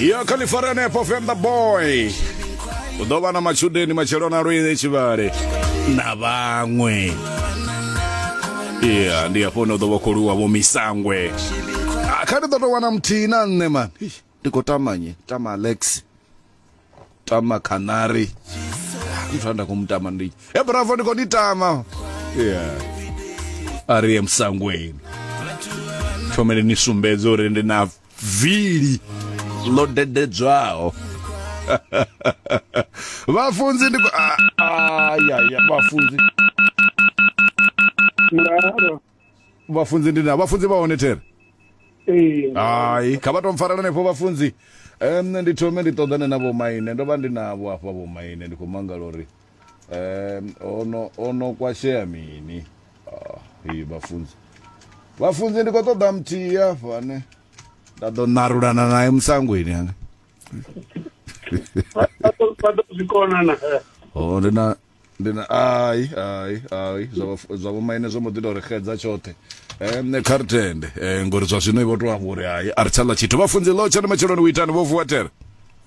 ya khalifari hanefho fenda boy u ḓo vha na matshudeni matshelo na lwile tshivhale na vhaṅwe ya ndi hafho hune u ḓo vha khou lwiwa vho misangwe Ah, kha ndi ḓo tou wana muthihi na nṋe mani Eish, ndi khou tamanye tama alex tama canary muthu a nda khou mutama ndi e bravo ndi khou ni tama ya a ri ye musangweni thomele ni sumbedze uri ndi na vili ḽo dededzwaho vhafunzi ndi ayaya vhafunzi vhafunzi ndi na vhafunzi vha hone there hai kha vha to mpfarela hanefho vhafunzi um ndi thome ndi ṱoḓane na vhomaine ndo vha ndi navho afha vhomaine ndi khou mangala uri um ono ono kwashea mini ah, iyi vhafunzi vhafunzi ndi khou ṱoḓa muthihi afho ane nda ḓo narulana naye musangweni ane o ndi na ndi na ai ai ai zwa vhomaine zwo mbo ḓi tou ri xedza tshoṱhe um nṋe kha ri tende um ngori zwa zwino i vho tou amba uri hai a ri tsha ḽa tshithu vhafunzi ḽo tshone matsheloni u itani vho vuwa tere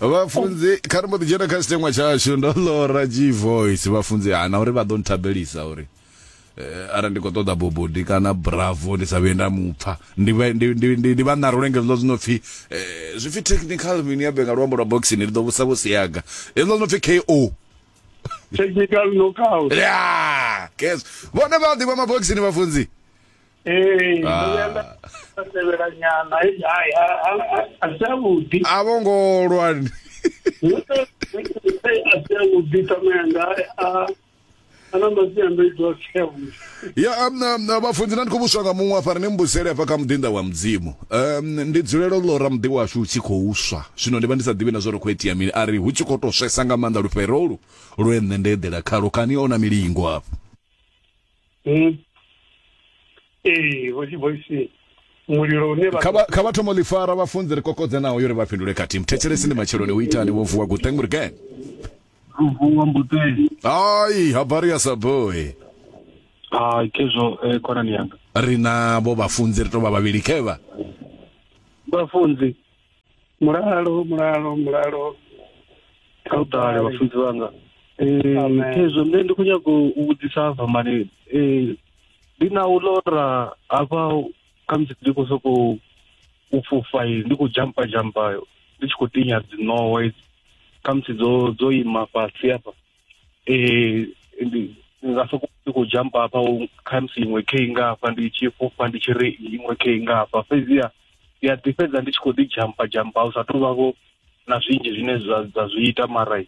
vhafunzi kha ri mbo ḓi dzhena kha tshiteṅwa tshashu ndo ḽora g voice vhafunzi hana uri vha ḓo nthabelisa uri eh, ara ndi khou ṱoḓa bobodi kana bravo ndi sa vhuye nda mupfa ndi vha- ndi- ndi- ndi- ndi vha ṋara ulenge zwiḽo zwino pfhi eh, zwi pfi technical mini ya benga luambo lwa boxini ndi ḓo vhusa vhusiaga hezwiḽo zwino pfi ko technical knockout ya kes vhone vha ḓivha maboxini vhafunzi ee ndo Ah. vhuya nda nda tevhela nyana he hai a- a- a- a si avhuḓi a vho ngo lwa ni. Hey, a si avhuḓi tamenda a a na masiandoitwa a si avhuḓi ya um, um, uh, vhafunzi na ndi khou vhuswa nga muṅwe afha ri ni mbusele afha kha muḓinḓa wa mudzimu um, ndi dzulela u ḽora muḓi washu u tshi khou swa zwino ndi vha ndi sa ḓivhi na zwo ri khou itea mini a ri hu tshi khou tou swesa nga maanḓa lufherolu lwe nṋe nda eḓela khalo kani ona milingo afho Hmm? ee vho dzivoisini mulilo une vha kha vha- kha vha thoma u ḽi fara vhafunzi ri kokodze naho yo ri vha fhindule khathihi muthetshelesi ndi matsheloni u itani wo vuwa guteng uri gen luvuwa mbuteli ai habari ya saboi a kezwo eh, khonani yanga ri navho vhafunzi ri tou vha vhavhili khevha vhafunzi mulalo mulalo mulalo kha u ṱale vhafunzi vhanga khezwo nṋe ndi khou nyaga u vhudzisa hafha mani ndi na u lora hafha khamusi ndi khou sokou u fhufha ndi khou jampa jampa ndi tshi khou tinya dziṋowa idzi khamusi dzo dzo ima fhasi hafha eh ndi nga soko ndi khou jump hafha khamusi iṅwe khe i ngafha ndi tshi fhufha ndi tshi ri iṅwe khe i ngafha fhedziha ndi a ḓi fhedza ndi tshi khou ḓi jampa jampa hu sa tou vhavho na zwinzhi zwine zwa dza zwi ita mara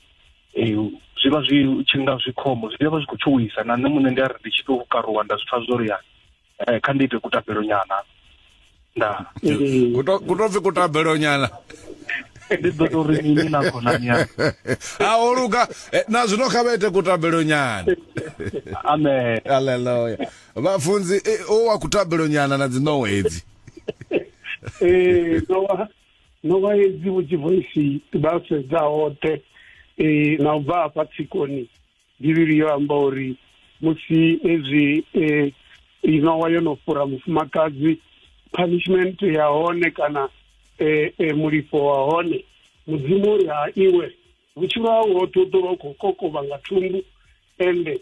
um zwi vha zwi tshi nga zwi khombo zwi vha zwi khou tshuwisa na nṋe muṋe ndi a ri ndi tshi tou karuwa nda zwi pfa zwo ri ya eh, kha ndi ite kutabelo nyana nda kutopfi kutabelo nyana ndi ḓo to ri mini na khonani ya a o luga eh, na zwino kha vha ite kutabelo nyana amen aleluya vhafunzi eh, o wa kutabelo nyana na dzi nowa hedzi eh nowa nowa hedzi vhutshi voice vha sedza hoṱhe eh na u bva hafha tsikoni Bivhili yo amba uri musi ezwi eh, inowa yo no fhura mufumakadzi punishment ya hone kana eh, eh, mulifho wa hone mudzimu uri ha iwe vhutshilo hau hoṱhe u ḓo vha u khou kokovha nga thumbu ende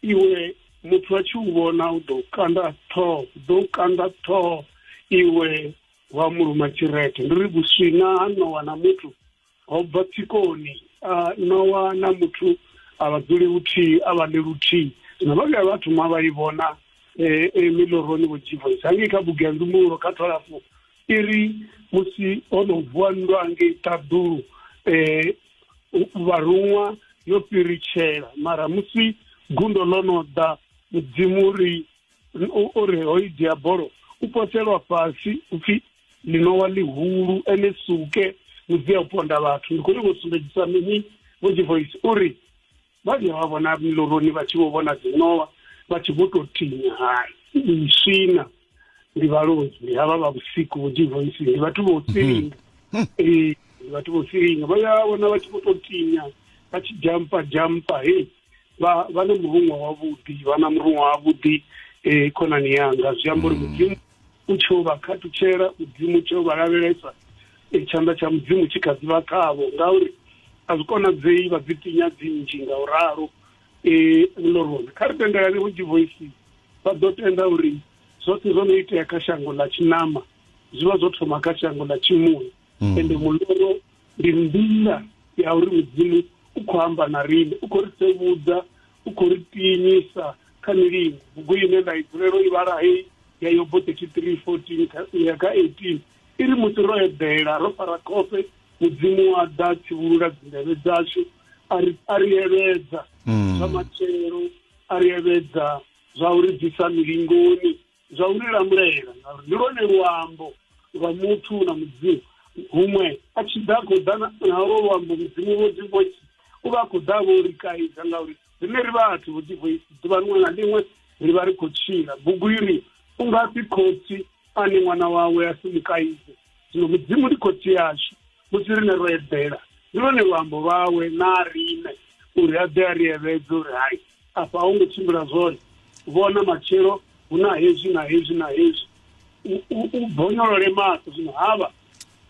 iwe muthu a tshi u vhona u ḓo kanda ṱhoho u ḓo kanda ṱhoho iwe wa muluma tshirete ndi ri vhuswina ha nowa na muthu ho bva tsikoni nowa na muthu a vha dzuli luthihi a vha ḽi luthihi zwino vha vhuya vha thoma vha i vhona eh, eh, miloroni vho jivoisa hangei kha bugu ya nzumbululo kha twalafu i ri musi ho no vuwa nndwa hangei ṱaḓulu um vharuṅwa yo fhiritshela mara musi gundo ḽo no ḓa mudzimu ri o ri hoyi diabolo u poselwa fhasi upfi linowa ḽihulu ene suke mudzi ya u ponda vhathu ndi khou nyanga u sumbedzisa mini vhoji voice uri vha vhuya vha vhona miloroni vha tshi vho vhona dzinowa vha tshi vho tou tinya hai iswina ndi vhaloi ndi havha vha vhusiku vhoji voice ndi vhathu vho silinga hmm. ee ndi vhathu vho silinga vha ya vhona vha tshi vho tou tinya vha tshi jampa jampa hei vha vha na murunwa wavhuḓi vha na murunwa wavhuḓi um khonani yanga zwi amba uri mudzimu U tshi u vha khathutshela, Mudzimu tshee u vha lavhelesa, e, tshanḓa tsha Mudzimu tshi kha ḓi vha khavho, ngauri a zwi konadzei vha dzi tinya dzi nnzhi nga u ralo. E, miloroni, kha ri tendelane uri divoisi vha ḓo tenda uri zwoṱhe zwo no itea kha shango ḽa tshinama zwi vha zwo thoma kha shango ḽa tshimuya, mm. ende muloro ndi nḓila ya uri Mudzimu u khou amba na riṋe, u khou ri sevhudza u khou ri pinyisa kha milingo bugu ine nda i dzulela u i vhala hei ya yobo 33 14 u ya kha 18 i ri musi ro eḓela ro fara khofhe mudzimu wa ḓa tshivhulula dzindevhe dzashu a ri a ri evhedza zwa matshelo a ri evhedza zwa uri bvisa milingoni zwa u ri lamulela ngauri ndi lwone luambo lwa muthu na mudzimu huṅwe a tshi ḓa khou ḓa nalwo luambo mudzimu vho dzi voice u vha a khou ḓa vho ri kaidza ngauri rine ri vhathu vho dzi voice ḓuvha liṅwe na liṅwe ri vha ri khou tshila bugu i ri u nga si khotsi ane ṅwana wawe a si mukaidze zwino mudzimu ndi khotsi yashu musi rine ro eḓela ndi lwone luambo lwawe na rine uri a ḓe a ri evhedze uri hai afha a hu ngo tshimbila zwone vhona matshelo hu na hezwi na hezwi na hezwi u bonyolole maṱo zwino havha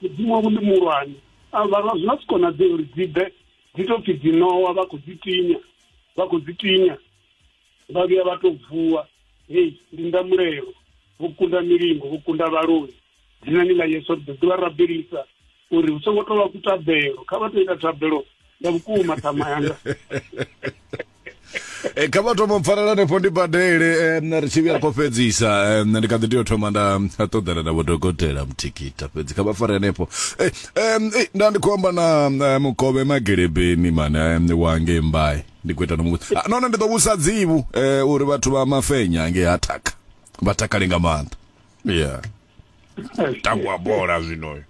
mudzimu wavho ndi muhulwane avha zwi nga si konadzee uri dzi bve dzi to pfi dzi nowa vha khou dzi tinya vha khou dzi tinya vha vhuya vha tou vuwa hei ndi ndamulelo vho kunda milingo vho kunda vhaloi dzinani ḽa yesu ri ḓo ḓivha rabelisa uri hu songo tovha kutabelo kha vha to ita thabelo ya vhukuma ṱhama yanga eh, kha vha thoma pfanela nefho ndi badele eh, ri tshi vhuya kho fhedzisa eh, ndi kha ḓi tea u thoma nda ṱoḓana na vhodokotela muthikita fhedzi kha vha fare nefho nda ndi khou amba na mukovhe magelebeni mane wange mbai ndi khou ita no muṱa ah, none ndi ḓo vhusa dzivhu um uri vhathu vha mafenya nge ha thaka vha takale nga maanḓa ya tangwa bola zwinoyo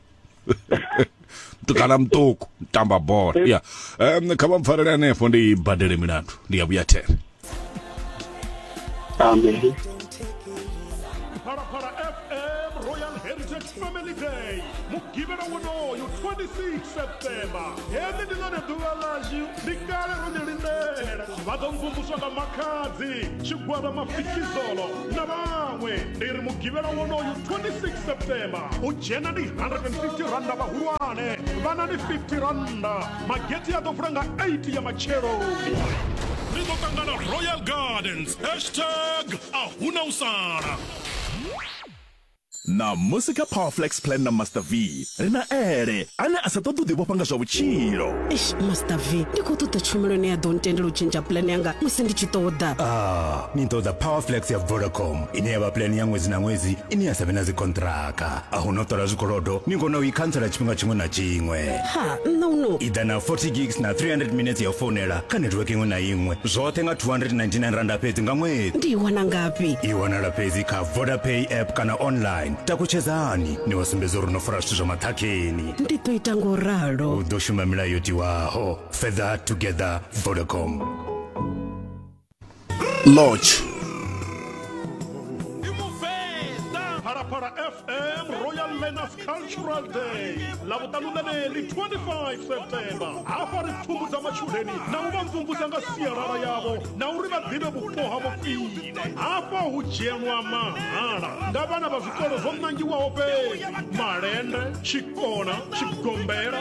mutukana muṱuku tamba bola ya um kha vha mpfarele hanefho ndi badele milandu ndi ya vhuya there amen phalaphala fm royal heritage family day mugivhela wonoyo 26 septemba heḽi ndi ḽone ḓuvha ḽashu ndi kale ro ḽi lindela vha ḓo mvumvuswa nga makhadzi tshigwada mafikizolo na vhaṅwe ndi ri mugivhela wonoyo 26 septemba u dzhena ndi 150 randa vhahulwane vhana ndi 50 randa mageti a ḓo vula nga 8 ya matsheloni ri ḓo ṱangana royal gardens hashtag a huna u sala na musi kha power flex plan na master v ri na ele ane a sa ṱoḓi u ḓivhofha nga zwa vhutshilo eish master v ndi khou ṱoḓa tshumelo ine ya ḓo ntendela u tshentsha plan yanga musi ndi tshi ṱoḓa ah ni ṱoḓa power flex ya vodacom ine ya vha plan ya ṅwedzi na ṅwedzi ine ya sa vhe na dzikontraka a hu no ṱola zwikolodo ni kona u i khantsela tshifhinga tshiṅwe na tshiṅwe ha nṋa uno i ḓa na 40 gigs na 300 minutes ya u founela kha netiweke iṅwe na iṅwe zwoṱhe nga 299 randa fhedzi nga ṅwedzi ndi i wana ngafhi i wanala fhedzi kha vodapay app kana online takutshedzani ni wa sumbedza uri no fara zwithu zwa maṱhakheni ndi ḓo ita ngo ralo u ḓo shuma milayo yo tiwaho further together vodacom lodge Phalaphala FM Royal Learners Cultural Day lavhuṱanu ḽeneli 25 septemba hafha ri pfhumbudza matshudeni na u vha mvumvusa nga sialala yavho na uri vha ḓivhe vhupo ha vhofhile hafha hu dzhielwa mahala nga vhana vha zwikolo zwo nangiwaho fhedzi malende tshikona tshigombela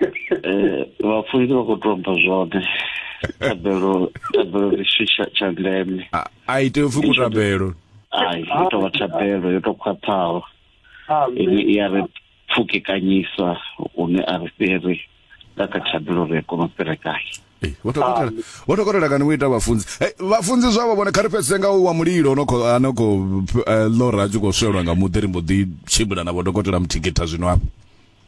eh vhafunzi vha khou tou bva zwone tabelo tabelo ndi tshithu tsha ndeme a i tea upfi kutabelo ai i tou vha tabelo yo tou khwaṱhaho ine i ya ri pfukekanyisa hune a ri fhiri nga kha tabelo ri a kona u fhirekahi eh, vho dokotela kani vho ita vhafunzi eh, vhafunzi zwavho vhone kha ri fhedzise nga wa mulilo no khou no khou eh, lora a tshi khou swelwa nga muḓi ri mbo ḓi tshimbila na vho dokotela muthikitha zwino afho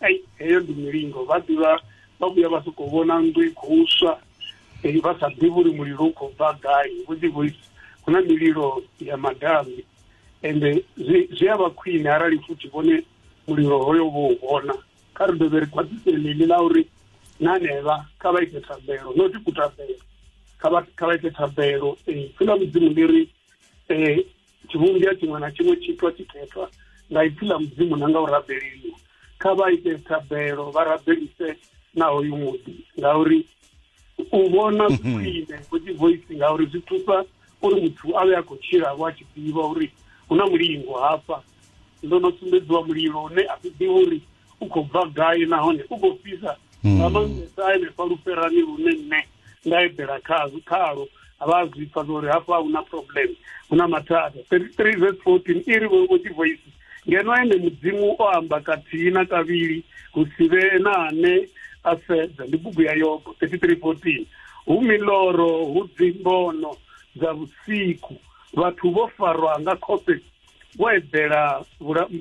ai heyo ndi milingo vha ḓivha vha vhuya vha sokou vhona nnḓu i khou swa vha sa ḓivhi uri mulilo u khou bva gai vho ḓi vho hu na mililo ya madami ende zwi zwi a vha khwine arali futhi vhone mulilo hoyo vho u vhona kha ri dovhe ri khwaṱhisele ḽi ḽa uri na hanevha kha vha ite thabelo no ti kutabelo kha vha kha vha ite thabelo um pfhi ḽa mudzimu ḽi ri um tshivhumbwa tshiṅwe na tshiṅwe tshitwa tshikhethwa nga ipfi ḽa mudzimu na nga u rabeleliwa kha vha ite thabelo vha rabelise na hoyu muḓi ngauri u vhona zwi mhm. khwine vhudzi voice ngauri zwi thusa uri muthu a vhe a khou tshila vho a tshi ḓivha uri hu na mulingo hafha ndo no sumbedziwa mulilo une a ḓiḓivha uri u khou bva gai nahone u khou fhisa hmm. nga maanḓesa henefha luferani lune nṋe nda eḓela khazwo khalo vha a zwi pfa zwauri hafha hu na problem hu na mathada three vs fourteen i ri vho tshi voisi ngeno ene mudzimu o amba kathihi na kavhili hu si vhe na ane a sedza ndi bugu ya yobo thirty three fourteen hu miloro hu dzimbono dza vhusiku vhathu vho farwa nga khofhe wo eḓela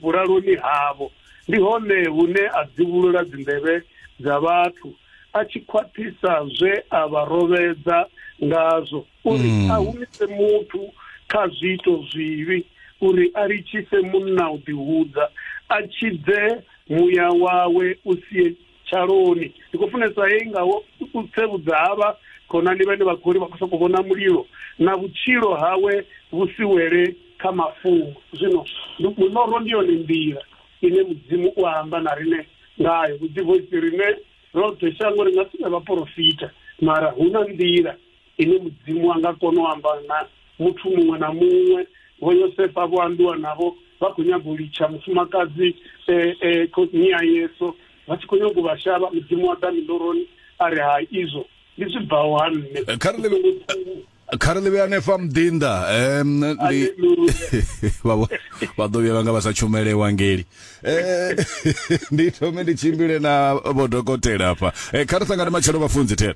vhulaloni havho, ndi hone hune a dzivhulula dzinḓevhe dza vhathu a tshi khwaṱhisa zwe a vha rovhedza ngazwo uri hmm. a humise muthu kha zwiito zwivhi uri a litshise munna u ḓihudza a tshidze muya wawe u sie Tshaloni. Ndi khou funesa hei nga u tsevhudza ha vha khonani vhane vha khou ri vha khou sokou vhona mulilo na vhutshilo hawe vhu si wele kha mafhungo. Zwino muṋoro ndi yone nḓila ine Mudzimu u amba na riṋe ngayo. Vhuḓivhoisi riṋe roṱhe shango ri nga si vhe vhaporofita, mara hu na nḓila. ine mudzimu a nga kona u amba na muthu muṅwe na muṅwe vho yosefa vho ambiwa navho vha khou nyaga u litsha mufumakadzi eh, eh, khotsini ya yesu vha tshi khou nyaga u vha shavha mudzimu wa ḓa miloroni a ri ha izwo ndi zwi bvaho ha nṋe Eh, kha ri ḽi- Songo ṱuwa. kha ri ḽivhe hanefha muḓinḓa em, ndi- Hallelujah. vha vho- vha ḓo vhuya vhanga vha sa tshumele evangeli Eh, ndi thome ndi tshimbile na vhodokotela hafha Eh, kha ri sangane matshelo vhafunzi thera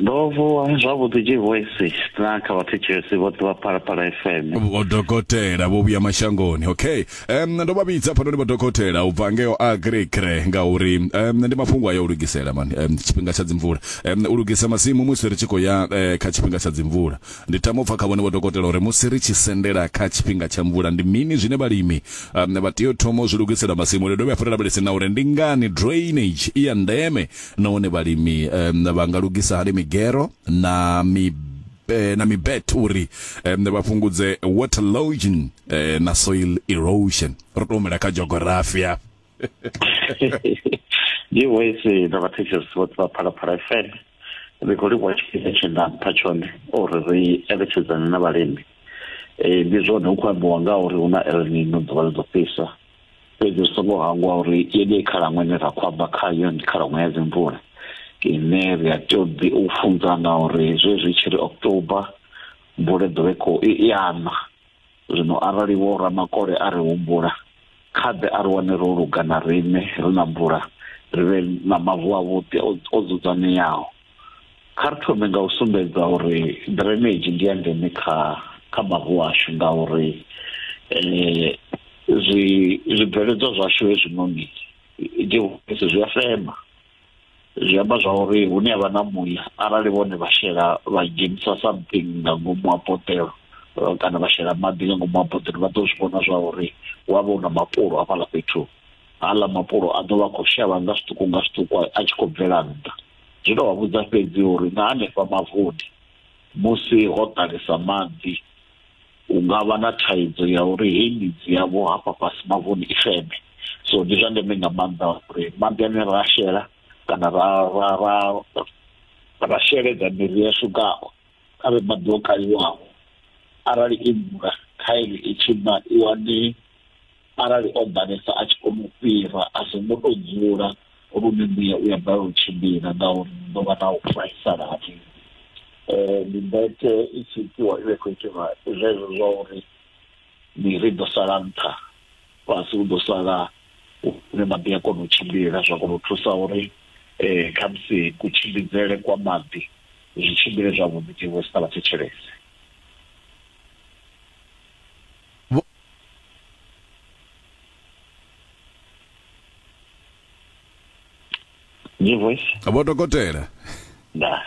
ndo vuwa zwavhuḓi tshi voice na kha vhathu tshesi vhoṱhe vha phalaphala fm vhodokotela vho vhuya mashangoni okay um, ndo vha vhidza phanoni vhodokotela u bva ngeo agricre ngauri um, ndi mafhungo ayo u lugisela mani um, tshifhinga tsha dzimvula um, u lugisa masimu musi ri tshi khou ya uh, kha tshifhinga tsha dzimvula ndi tama u pfa kha vhone vhodokotela uri musi ri tshi sendela kha tshifhinga tsha mvula ndi mini zwine vhalimi um, vha tea u thoma u zwi lugisela masimu ri dovhe hafhu ri lavhelese na uri ndi ngani drainage i ya ndeme nahone vhalimi um, vha nga lugisa hani migero na mi eh, na mibet uri um, vha fhungudze water logging eh, na soil erosion ro to humela kha geography ya ndi wese na vhathetshelesi vhoṱhe vha phalaphala fm ri khou livhuwa tshifhinga tshe nda mpha tshone uri ri eletshedzane na vhalimi um ndi zwone hu khou ambiwa nga uri hu na elnino ḓuvha ḽi ḓo fhisa fhedzi ri songo hangwa uri yeneyi khalaṅwaha ine ra khou amba khayo ndi khalaṅwaha ya dzimvula ine ri a tea u ḓi u funzana uri zwezwi tshi ri october mvula ḓo vhe khou i ana zwino arali vho ramakole a ri humbula kha ḓe a ri wane ro luga na riṋe ri na mvula ri vhe na mavu a vhuḓi o dzudzanyeaho kha ri thome nga u sumbedza uri drainage ndi ya ndeme kha kha mavu ashu ngauri um eh, zwi zwibveledzwa zwashu hezwinoni dihulese zwi a fema zwi amba zwa uri hune havha na muya arali vhone vha shela vha dzhenisa something nga ngomu ha potelo eh, kana vha shela maḓi nga ngomu ha potelo vha ḓo zwi vhona zwa uri wa vha u na mapulo hafhaḽa fhethu haḽa mapulo a ḓo vha khou shavha nga zwiṱuku nga zwiṱuku a tshi khou bvela nnḓa zwi tou vha vhudza fhedzi uri na hanefha mavuni musi ho ḓalesa maḓi hu nga vha na thaidzo ya uri heyi midzi yavho hafha fhasi mavuni i feme so ndi zwa ndeme nga maanḓa uri maḓi ane ra shela kana ra ra ra ra sheledza miri yashu ngao a vhe maḓi o kaliwaho arali i mvula khaelo i tshi na i wane arali o ḓalesa a tshi kona u fhira a songo tou dzula lune mbuya u ya balelwa u tshimbila ngauri ni ḓo vha na u vhaisala ha mini um mimbete i tshi itiwa i vha i khou itelwa zwezwo zwa uri miri ḓo sala nṱha fhasi hu ḓo sala hune maḓi a kona u tshimbila zwa kona u thusa uri um khamusi kutshimbidzele kwa maḓi zwi tshimbile zwavhuḓi tshiṅwe tshi sa vha thetshelese New voice. vho dokotela Da.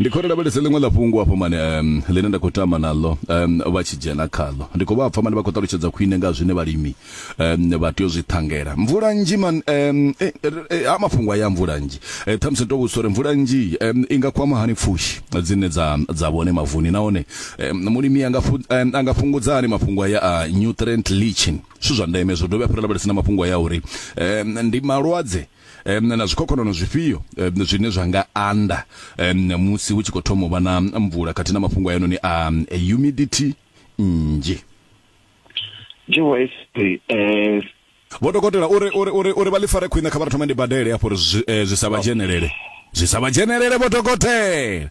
ndi khou lavhelesa ḽiṅwe ḽa fhungo afho mane um, ḽine nda khou tama naḽo um, vha tshi dzhena khaḽo ndi khou vha pfa mane vha khou ṱalutshedza khwine nga zwine vhalimi um, vha tea u zwi ṱhangela mvula nnzhi man um, eh, eh, ha mafhungo aya a mvula nnzhi eh, ṱhamusi ndo vhudzisa uri mvula nnzhi um, i nga kwama hani pfushi dzine dza dza vhone mavuni nahone Eh, mulimi anga eh, anga fhungudza hani mafhungo aya a nutrient leaching zwithu zwa ndeme zwo dovha fhira lavhelesa na mafhungo aya uri eh, ndi malwadze na zwikhokhonono zwifhio zwine zwa nga anda musi hu tshi khou thoma u vha na mvula khathihi na mafhungo ayanoni a humidity nnzhi vho dokotela uri uri uri uri vha ḽi fare khwine kha vha thoma ndi badele afho uri zwi sa vha dzhenelele zwi sa vha dzhenelele vho dokotela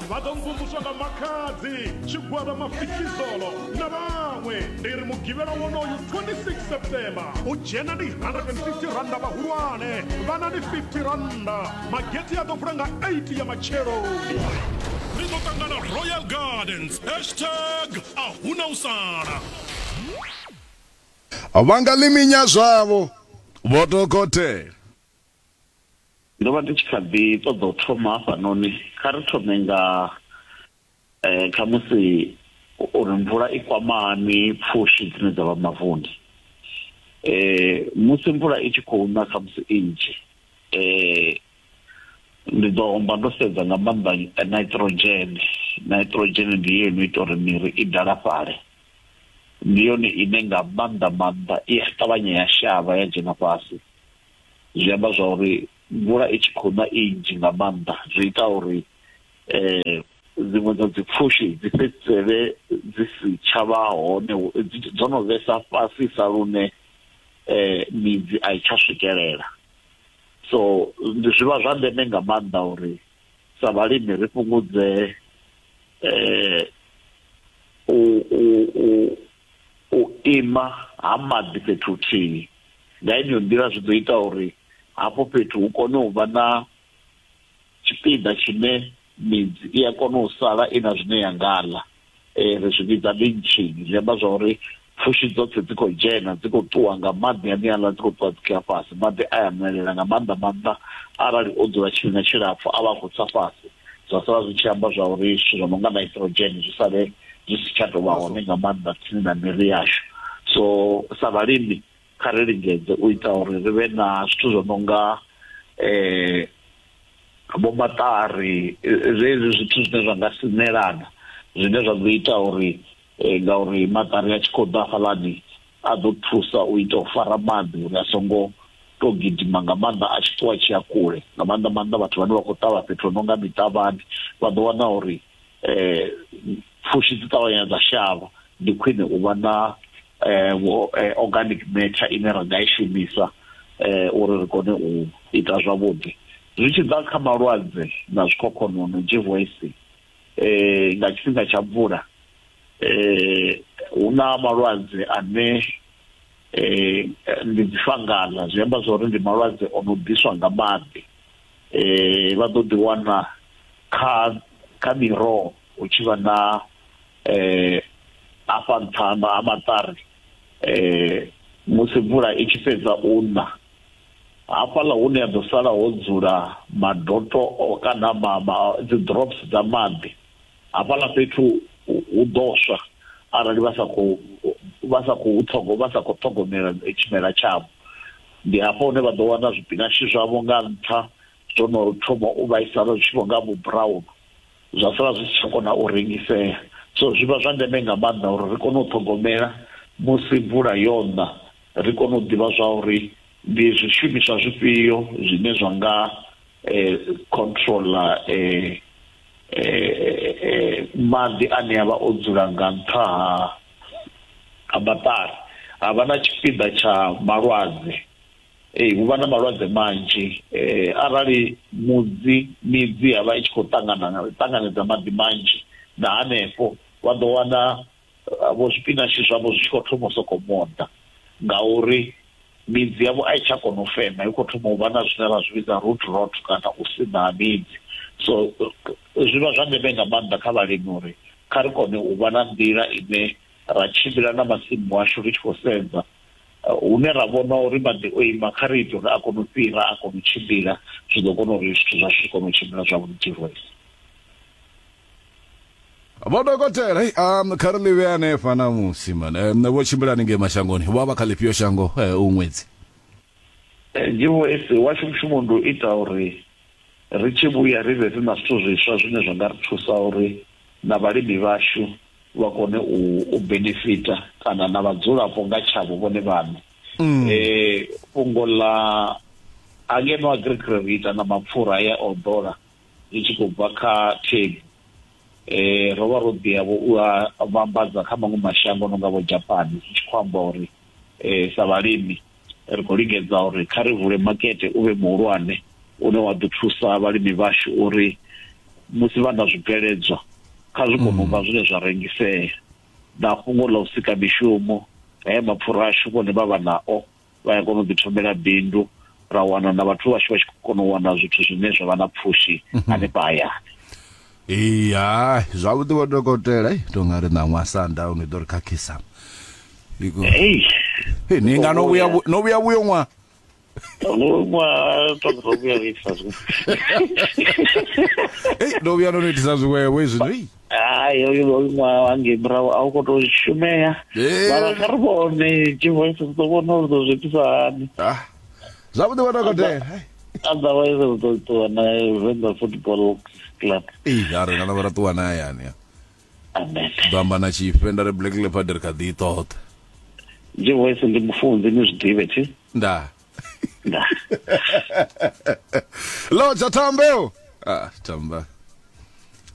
vha ḓo mvumvuswa nga makhadzi tshigwada mafikizolo na vhaṅwe ndi ri mugivhela wonoyu 26 september u dzhena ndi 150 randa vhahulwane vhana ndi 50 randa mageti a ḓo vula nga 8 ya matsheloni ri ḓo ṱangana royal gardens hashtag a huna u sala vha nga ḽiminya zwavho vho dokotela Ndo vha ndi tshi kha ḓi ṱoḓa u thoma hafhanoni, kha ri thome nga eh, khamusi uri mvula i kwama hani pfushi dzine dza vha mavuni eh, musi mvula i tshi khou na khamusi i nnzhi eh, ndi ḓo homba ndo sedza nga maanḓa eh, nitrogen nitrogen ndi yo ino ita uri miri i dalafhale ndi yone ine nga maanḓa maanḓa i a ṱavhanya ya shavha ya dzhena fhasi zwi amba zwa uri mvula i tshi khou na i nnzhi nga maanḓa zwi ita uri eh dziṅwe dza dzi pfushi dzi fhedzisele dzi si tsha vha hone dzo no vhesa fhasisa lune eh midzi a i tsha swikelela so zwi vha zwa ndeme nga maanḓa uri sa vhalimi ri fhungudze eh u u u ima ha maḓi fhethu huthihi. Nga yeneyo nḓila zwi ḓo ita uri hafho fhethu hu kone u vha na tshipiḓa tshine midzi i a kona u sala i na zwine ya nga ḽa. Ri zwi vhidza lynching, zwi amba zwa uri pfushi dzoṱhe dzi khou dzhena dzi khou ṱuwa nga maḓi aneaḽa dzi khou ṱuwa dzi khou ya fhasi. Maḓi a ya nwelela nga maanḓa maanḓa arali o dzula tshifhinga tshilapfhu a vha a khou tsa fhasi. zwa sala zwi tshi amba zwa uri zwithu zwo no nga nitrogen zwi sale zwi si tsha tou vha hone nga maanḓa tsini na miri yashu so sa vhalimi kha ri lingedze u ita uri ri vhe na zwithu zwo no nga um vho maṱari zwezwi zwithu zwine zwa nga sinelana zwine zwa ḓo ita uri ngauri maṱari a tshi khou ḓa hafhaḽani a ḓo thusa u ita u fara maḓi uri a songo to gidima nga maanḓa a tshi ṱuwa tshi ya kule nga maanḓa maanḓa vhathu vhane vha khou ṱavha fhethu no nga miṱavhani vha ḓo wana uri eh pfushi dzi ṱavhanya dza shavha ndi khwine u vha na eh, eh organic matter ine ra nga i shumisa eh uri ri kone u ita zwavhuḓi zwi tshi ḓa kha malwadze na zwikhokhonono GVS eh nga tshifhinga tsha mvula eh hu na malwadze ane eh ndi dzi fangala zwi amba zwori ndi malwadze o no ḓiswa nga maḓi eh vha ḓo ḓi wana kha kha miroho hu tshi vha na eh afha nṱha ha maṱari eh musi mvula i tshi fhedza u na hafhaḽa hune ya ḓo sala ho dzula madoto kana mama dzi drops dza maḓi hafhaḽa fhethu hu ḓo swa arali vha sa khou vha sa khou ṱhogo vha sa khou ṱhogomela tshimela tshavho ndi hafho hune vha ḓo wana zwipinashi zwavho nga nṱha zwo no thoma u vhaisala zwi tshi vho nga vhu brown zwa sala zwi si tsha kona u rengisea so zwi vha zwa ndeme nga maanḓa uri ri kone u ṱhogomela musi mvula yo ṋa ri kone u ḓivha zwa uri ndi zwishumiswa zwifhio zwine zwa nga eh, controller eh, maḓi ane a vha o dzula nga nṱha ha maṱari ha vha na tshipiḓa tsha malwadze ee hu vha na malwadze manzhi arali mudzi midzi ya vha i tshi khou ṱangana ṱanganedza maḓi manzhi na hanefho vha ḓo wana vho zwipinatshi zwavho zwi tshi khou thoma u sokou moḓa ngauri midzi yavho a i tsha kona u fema i khou thoma u vha na zwine ra zwi vhidza root rot kana u sina ha midzi so zwi vha zwa ndeme nga maanḓa kha vhalimi uri kha ri kone u vha na nḓila ine ra tshimbila na masimu ashu ri tshi khou sedza uh, hune ra vhona uri maḓi o ima kha ri ite uri a kone u fhira a kone u tshimbila zwi ḓo kona uri zwithu zwashu zwi kone u tshimbila zwavhuḓi tshirwesi vho dokotela hey, um, kha ri ḽivhe hanefha namusi man um, vho tshimbilani ngei mashangoni vha vha kha ḽifhio shango eh, u ṅwedzi ndivho eh, ese washu mushumo ndi u ita uri ri tshi vhuya ri vhe ri na zwithu zwiswa zwine zwa nga ri thusa uri na vhalimi vhashu vha kone u u benefita kana na vhadzulapo nga tshavho vhone vhaṋe mm. e fhungo ḽa angeno agric ri ita na mapfura ya odola ri tshi khou bva kha themu um ro vha ro ḓiya vho u a vhambadza kha maṅwe mashango no nga vho Japani zwi tshi khou amba uri um sa vhalimi ri khou lingedza uri kha ri vule makete u vhe muhulwane une wa ḓo thusa vhalimi vhashu uri musi vha na zwibveledzwa kha zwi kone u vha zwine zwa rengisea na fhungo ḽa u sika mishumo haya mapfura ashu vhone vha vha nao vha ya kona u ḓithomela bindu ra wana na vhathu vhashu vha tshi khou kona u wana zwithu zwine zwa vha na pfushi mhm. hanefha hayani iya zwavhuḓi vho dokotela to nga ri ṋaṅwa sundown i ḓo ri khakhisa ni nga no vhuya no vhuya vhuyo ṅwa ṅwa ṱoḓa vhuya vhuisa zwiṅwe no vhuya no no itisa zwiṅwevho izwino hayi hoyu hoyu ṅwaha wangei murahu a u khou tou shumea Eh. mara kha ri vhone tshivoice ri ḓo vhona uri ḓo zwi itisa hani Ah, zwavhuḓi vha dokotela hai. otherwise ri ḓo ṱuwa na venḓa football club Ee, a ri ngana vha ra ṱuwa na hayani ya. amen ḓo amba na tshifhe nda ri black leopard ri kha ḓi i ṱoḓa tshivoice ndi mufunzi ni zwi ḓivhe thi nda nda loja thambe o ah tamba